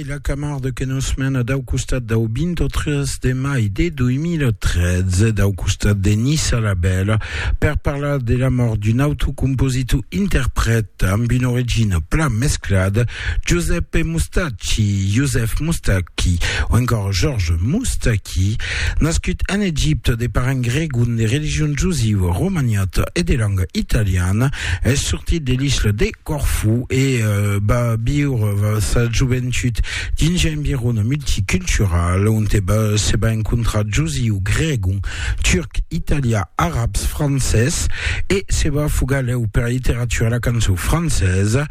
E la Camarde que nos mena dau costat dau 23 de mai de 2013, dau costat de Nissa la Bèla, per parlar de la mòrt d'un autre compositor interprèt amb una origina plan mesclada, Giuseppe Mustacchi, Joseph Moustaki, o encòra Georges Moustaki, nascut en Egipte de parents gregon de religion jusiva, romaniata e de lenga italiana, es sortit de l'isla de. Corfú e va viure sa joventut dins un environ multicultural onte se va encontrar josiu, gregon, turc, italià, arabs, francés e se va fugar lèu per la literatura e la cançon francesa.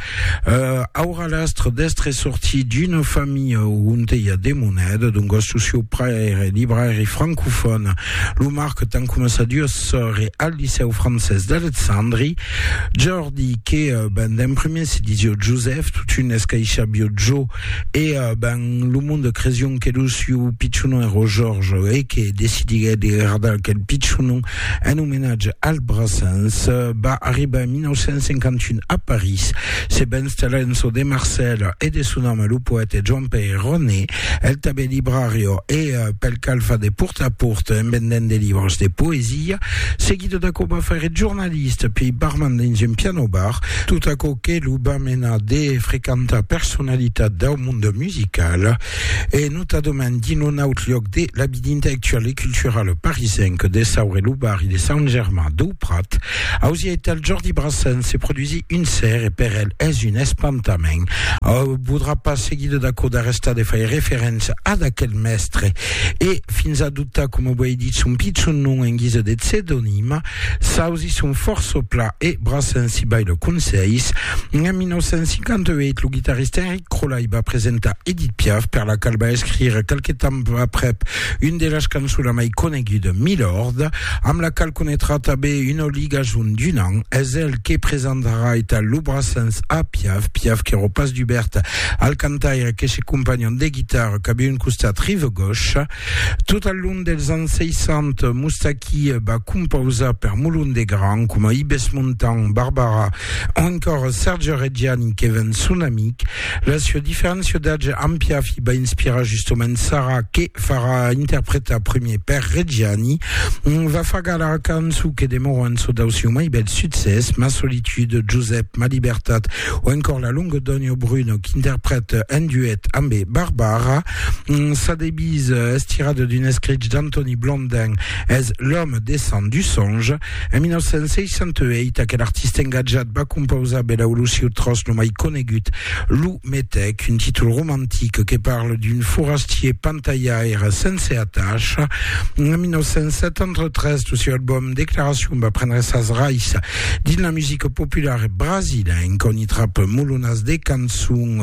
Aurà l'astre d'èstre sortit d'una familha onte i a de moneda, doncas lo sieu paire èra libraire francofòn. Lo marquet an coma sa duas sòrres al licèu francés d'Alexandri. Di que ben d'en prumèr se disió Josèf, totun escaishabió Jo, e ben lo monde cresión que lo siu pichonon èró Jòrge, e que decidiguèt de gardar aquel pichonon en omenatge al Brassens. Va arribar en 1951 a París, se va installar en çò de Marcèla e de son ame lo poète Joan-Pèir Roné. El tanben librario e pel cal fa de port a port en vendent de libros de poesia, seguido d'aquò va faire eth jornalista piei barman dins un piano bar, tot aquò que lo va menar de frequentar personalitats dau monde musical e notadament dins lo naut lloc de la vida intellectuala e culturala parisenca de Saur e lo barri de Sant Germain dau Prat, Ausieital Jordi Brassen se produisi un ser e per el es un espantament. Au podrà pas seguir de dacò d'arrestar de faire referéncia ad aquel mèstre e fins adoptar, coma uèi dit, son pichon nom en guisa de psedonim. S'ausi son fòrça pla e Brassen si bai lor conselhs. En 1958 lo guitarrista Enric Crollai va presentar Edith Piaf, per la qual va escrire qualque temps aprèp Une de las cançonas mai conegudas, Milord, amb la qual conetrà tanben una ligason d'un an, es el que presentarà eta lo Brassens a Piaf, Piaf qu'èro pas dubèrt al cantaire que se companhon de guitarra cap un costat rive gauche. Tot al long dels ans 60, Moustaki va compausar per molon de gran, coma Ibes Montand, Barbara o encòra Serge Reggiani que ven son amic. La sua diferéncia d'atge ampia fi ba inspirar justament Sara que farà interpretar premier per Reggiani va fagar la cançon que demora en çò dau siu mai bèl succès Ma solitude, Josep, Ma libertat o encòr La longa Donio Bruno qu'interprète en duet ambe Barbara Sa devise, estirada d'un escrich d'Antoni Blondin es L'homme descend du songe En 1968, aquel artista engatjat va compausar per l'Aulusiu Tros lo mai conegut, Lo Metèc, un títol romantic que parla d'un forastier pantalhaire sense atacha. En 1973, lo seu album Declaracion va prendre sas rais dins la musica populara brasilenca, on i trap molonas de cançons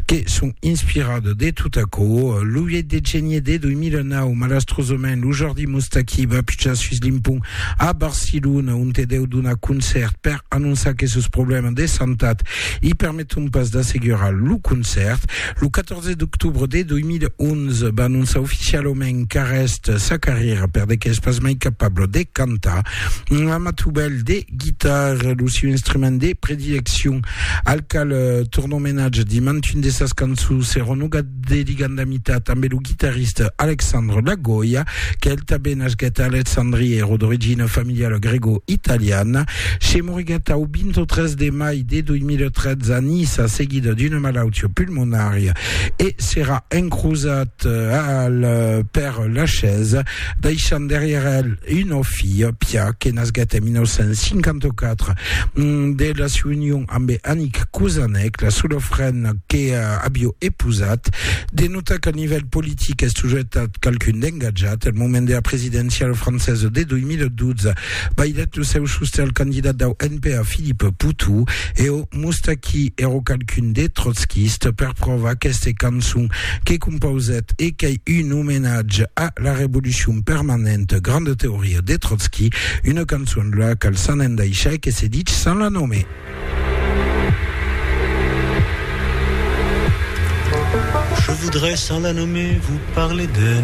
que son inspiradas de tot aquò. Lo 8 de genier de 2009, malastrosament, lo jordi Oi Moustaki va pichar sus l'impont a Barcelona, onte deu donar concèrt per anonçar que sos problèmas de santat i permeton pas d'assegurar lo concèrt. Lo 14 d'octobre de 2011 va anonçar oficialament qu'arrèst sa carrièra per de qu'es pas mai capable de cantar. Un amatubèl de guitarra, lo siu instrument de predileccion, al cal torna omenatge dimantun de sas cançons, se renogat de ligandamitat tanben lo guitarrista Alexandre Lagoya, qu'el tanben nasquèt a Alexandria, èra d'origina familiala grego-italiana. Se moriguèt au 23 de mai de 2013 a Niça seguida d'una malautia pulmonària e serà encrosat al Père Lachaise. deishant darrièr el una filha, Pia, que nasguèt en 1954 de la siua union ambe Annick Kozanek, la sola frena que avió epousat. De notar qu'al nivèl politic es tojetat qualqu'un d'engatjat. Al moment dera presidenciala francesa de 2012, bailhèt lo seu sostè al candidat dau NPA Philippe Poutou e o. Moustaki ero qualqu'un de trotskista per provar aqueste cançon que compausèt e qu'ei un omenatge a la revolucion permanenta, granda teoria de Trotski, una cançon la qual s'an endaishar e que se dich sans la nommer. Je voudrais sans la nommer vous parler d'elle.